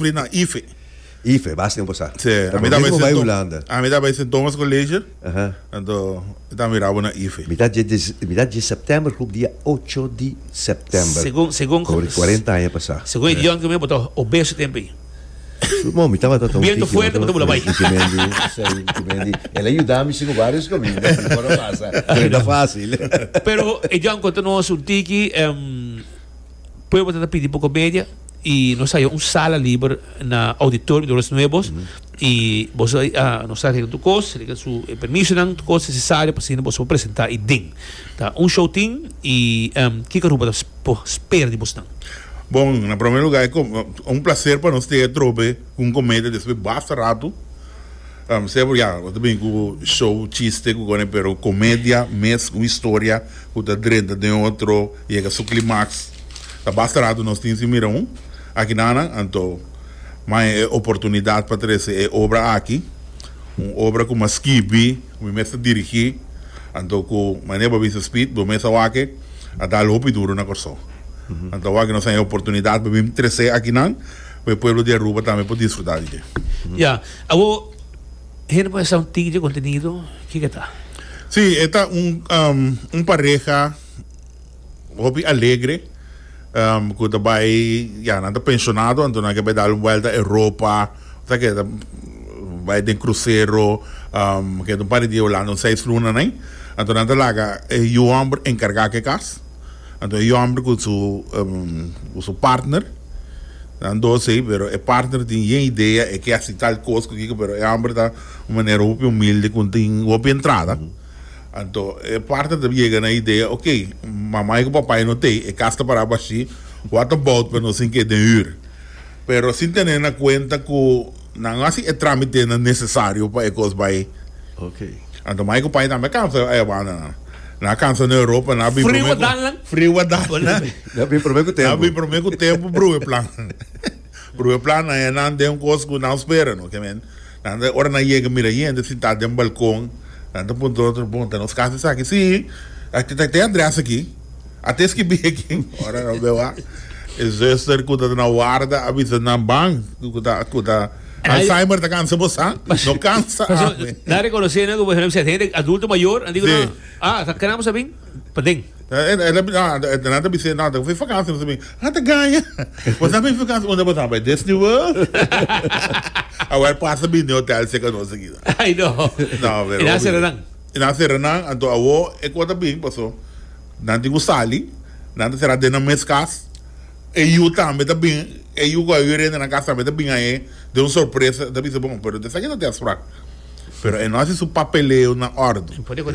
Pri na ife. Ife, bas tempo sa. Sí, a mi ta bai Sint Thomas. A mi ta bai Sint Thomas College. Anto mi ta mira bo na ife. Mi ta dje September hoop dia ocho di September. Segun, segun. Koberi cuarenta aña pasa. Segun e dion ke mi a bota obeso tempo ei. Bo mi tabata ta un tiki. Biento fuerte bo ta bula bai. Tiki Mendi, sei, tiki Mendi. El a yuda mi sico varios caminda si por a pasa. Pero no ta facil. Pero e dion konta nos un tiki. Pueblo ta ta pidi por comedia y nos haya un sala liber na auditorio Dolores Nuevos y boso a nos a regla tur cos, regla su permisonan, tur cos necesario pa asina boso por presenta ahi den. Ta un show tin y kiko Aruba ta por spera di bosnan? Bon, na prome lugar e un placer pa nos sta atrobe cu un comedia despues basta rato. Sebo ya, bo ta bini ku show, chiste ku kone pero komedia mes un historia ku ta drenta den otro yega su klimaks ta basta ratu nos tin sin mira un aki nananan anto maya e oportunidat pa trese e obra aki un obra ku m'a skibi ku mi mes ta dirigi anto ku manera bo a bisa Speed bo mes awake a dal hopi duru na Kòrsou anto awak nos a haña e oportunidat pa bini trese akinan. Cu e pueblo di Aruba tambe por disfruta di dje. Ya. Awor, hende por hesa un tiki dje contenido, kico e ta? Si, e ta un un pareha hopi alegre, cu ta bay, ya, nan ta pensionado, anto nan ke bay dal un welta Europa, ta ke ta bay den crucero, keda un par di dia Hulanda, un seis luna na ay. Anto nan ta laga e yu homber encarga ke cas. Anto e yòmber ku su ku su partner nan dos ei pero e partner tin yen idea e ke hasi tal kos ku kiko pero e hòmber ta un manera hopi humilde ku tin hopi entrada anto e partner ta yega na idea okay mamai ku papai no tei e kas ta para bashí what about pa nos tin ke den hür pero sin tene na kuenta ku. Nan hasi e trámitenan nesesario pa e kos bai. Anto Michael Pai tambe a kansa e banda nan. Nan a kansa na Europa, nan a bin promé ku friu a dal nan. Nan a bin promé ku tempu. Nan a bin promé ku tempu bruwe plan. Bruwe plan nan e nan den un kos ku nan spera no. Nan ta ora nan yega mira yende sintá den balkon, nan ta puntra otro, bon ta nos kas esaki? Sí, ta te Andreas aki. A ta esky bia kin ora nan beu a e zuster ku ta ta na warda a bisa nan ban ku ta ku ta Alzheimer ta kansa bo sa? No kansa ami. Nan rekonosé nan ku bo esempel hende adulto mayor nan diku nan a ta kena bo sa bin paden. Nan ta bis'é no ta for vakansia nos a bin a ta gaña bo sa bin vakansia unda bo ta bai Disney World a wer pasa bin den hotel seka nos a kida. Ai no e nan sera nan. E nan a sera nan, anto awo e kos a bin, paso nan tin ku sali, nan ta sera den nan mes kas, e yu tambe ta bin, e yu ku a yu renta nan kas tambe ta bin ahe den un sorpresa, ta bisa bon, pero ta esaki ta test prak, pero e no hasi su papeleo na ordo,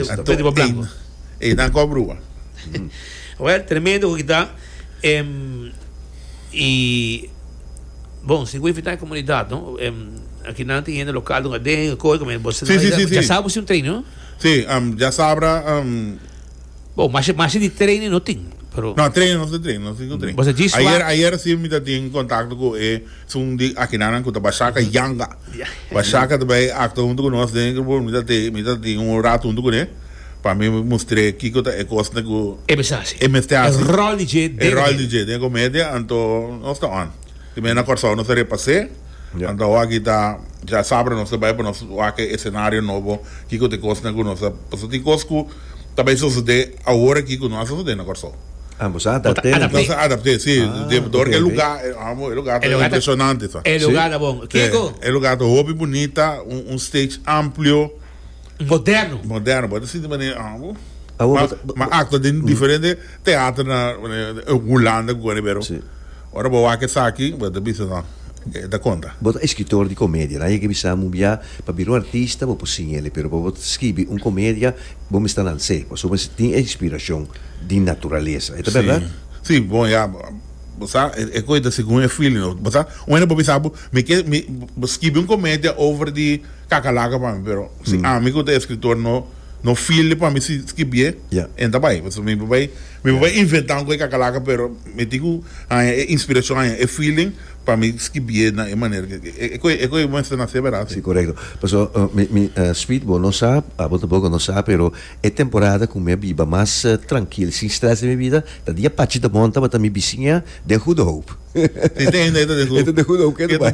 anto ey nan kos bruha. Well, tremendo ku kita, em, y. Bon, si bo invita e comunidad, no? Em, aki nan tin hende local dunga den, dunga koi, come bo sina Sí, sí, sí, sí. Djasaba bo sin un training, no? Sí, am, djasabra, am, Bon, masha, masha di training no tin, pero No, training no tin training, no tin cu training. Boso djis Ayer, wak. ayer sí mi ta tin contacto cu e sun di Akinanan cu ta Bashaka Yanga. Ya. Bashaka ta bay acto hunto cu nos den e grupo, mi ta te, mi ta tin un rato hunto cune. Pa mi mustr'é kiko ta e kosnan ku e mester hasi. E mester hasi. E ròl di dje den komedia. E ròl di dje den komedia, anto nos ta on. Te mira na Kòrsou nos ta repas'é, anto awaki ta ya sabra nos ta bai pa nos wak e esenario nobo, kiko ta e kosnan ku nos ta, pasobra tin kos ku ta bai sosodé awor aki ku no a sosodé na Kòrsou. Ah, bo sa adapt'é nan pues. Nos a adapt'é, si. Dor ku e lugá, amo, e lugá ta impresionante sa. E lugá ta bon. Kiko? E lugá ta hopi bunita, un stage amplio. moderno. Moderno, bo ta sinti mane, ah, bo. Ah, bo, ma, bo, ma acto den mm. diferente teatro na Holanda, eh, kukane pero. Sí. Ora bo wak esaki, bo ta bisa no. E ta conta. Bo ta escritor di comedia, nan yeke bisa mu bia, pa bira un artista bo por sin ele, pero pa bo scribi un comedia, bo mester lans'e, pasobra bo mester tin e inspiracion di naturalesa. E ta berdad? Sí. Sí, bon, ya, bo sa, e, e coi ta segun e feeling, bo sa, un mene bo bisa, bo, mi ke, mi, bo scribi un comedia over di Kaka laga pa mi pero si ami ku ta eskritor no no feel di pa mi si skibié en ta bai pasobra mi por bai mi por bai inventá un koe kaka laga pero mi tin ku haña e inspirashon haña e feeling pa mi skibié na e manera ke e koe e koe mester nasé bera si korekto pasobra mi mi Sweet bo no sa abo tampoco no sa pero e temporada ku mi a biba mas trankil sin strès den mi bida ta di apachi ta bòn tabata mi bisiña den Goede Hoop e ta den Goede Hoop ke ta bai.